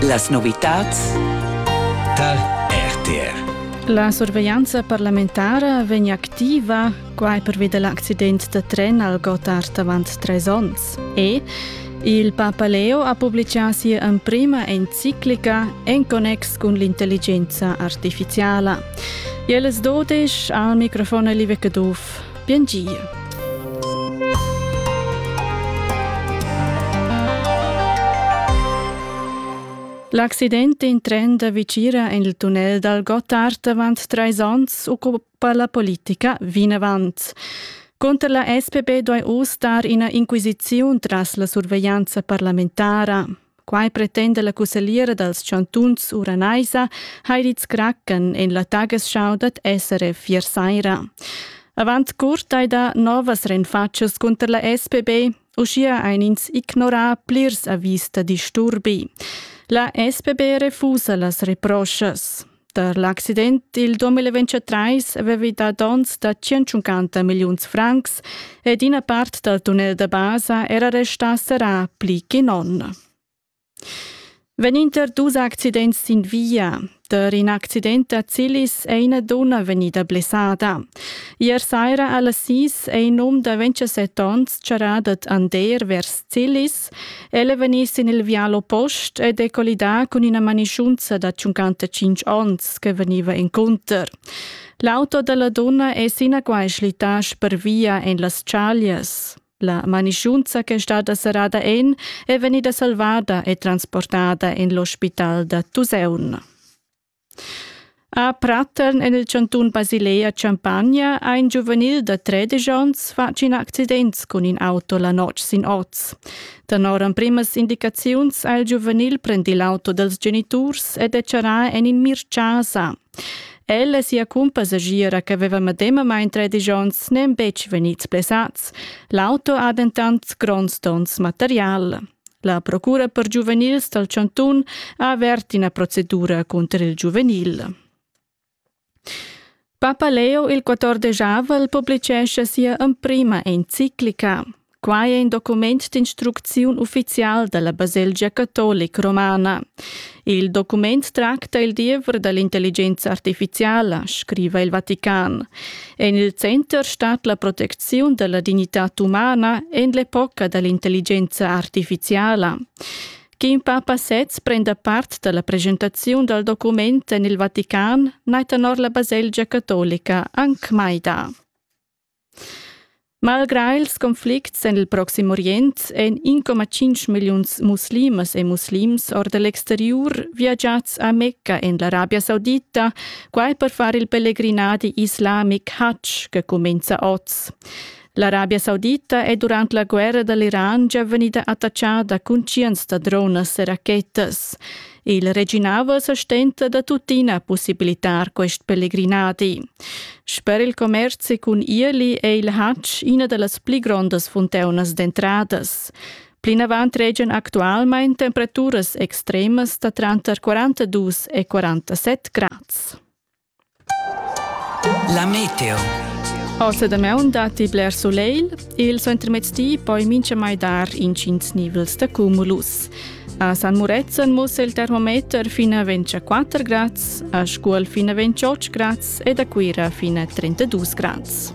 Las novitads dal RTR. La surveglianza parlamentara vegn activa quai pervi dell'accident da tren al Gotthard avant tres onns. E il Papa Leo ha publicà sia emprima enciclica en connex cun l'intelligenza artificiala. Jeles Dodisch al microfon Live Caduff. Biengiu. L'accident in tren da Vicira en il tunnel dal Gottard avant trais onns occupa la politica vinavant. Conter la SPP doi uss dar ina inquisiziun tras la surveglianza parlamentara. Quai pretenda la cussagliera dals chantuns Uranaisa Heidi Zkracken en la Tagesschau dad SRF ier saira. Avant curt hai dà novas renfatschas cunter la SPB, uschia ein ins ignorà plirs avis da disturbi. La SPB refusa las reproschas. Per l'accident il 2023 avevi dà donns da 150 milliuns francs ed ina part dal tunnel da basa era restà serrà pli che non. Vegninter dus accidents sin via. Per in accident a Zilis è ina donna vegnida blessada. Ier saira a las 6 è in um da 27 onns charat ad Ander vers Zilis El è vegnì sin il vial oppost ed è collidà cun ina manischunza da 55 onns che vegniva encunter. L'auto da la dunna è sinaquai schlittà spervia en las chaglias. La manischunza che è stada serrada en è vegnida salvada e transportada en l'ospital da Tuseun. A Prattern en il chantun Basilei a Champagna ha in giuvenil da tredisch onns fatg in accident cun in auto la notg sin oz. Tenor emprimas indicaziuns ha il giuvenil prendì l'auto dals geniturs ed è charrà en in mirchasa. El e sia cumpa segira che aveva medemamain tredisch onns n'èn betg vegnids blessads. L'auto ha dentant gronds donns material. La procura per giuvenils dal chantun ha avert ina procedura cunter il giuvenil. Papa Leo il 14 avrel publicescha sia emprima enciclica. Quai è in document d'instrucziun uffizial da la baselgia catolica romana. Il document tracta il diever da l'intelligenza artifiziala, scriva il Vatican. En il center stat la protecziun da la dignitad umana en l'epoca da l'intelligenza artificiala. Kim Papa sez prenda part dalla presentaziun dal document en il Vatican, naitanor la baselgia catolica anc mai da. Malgrà ils conflicts en il Proxim Orient èn 1,5 milliuns muslimas e muslims or da l'exteriur viagiads a Mecca en l'Arabia Saudita, quai per far il pellegrinadi islamic Hajj che cumenza oz. L'Arabia Saudita è durant la guerra da l'Iran già vegnida attachada cun tschients da dronas e rachetas. Il reginava sa stenta da tuttina possibilitar quest pelegrinadi. Sper il commerzi cun Irli è il Hatsch ina da las pli grondas funteunas d'entradas. Plinavant regian actualmain temperaturas extremas da tranter 42 e 47 grads. La meteo. Aussa damaun datti bler solegl. Il suentermezdi poi mintgamai dar intgins nivels da cumulus. A San Murezzan mussa il termometer fin a 24 grads, a Scuol fin a 28 grads ed a Cuira fin a 32 grads.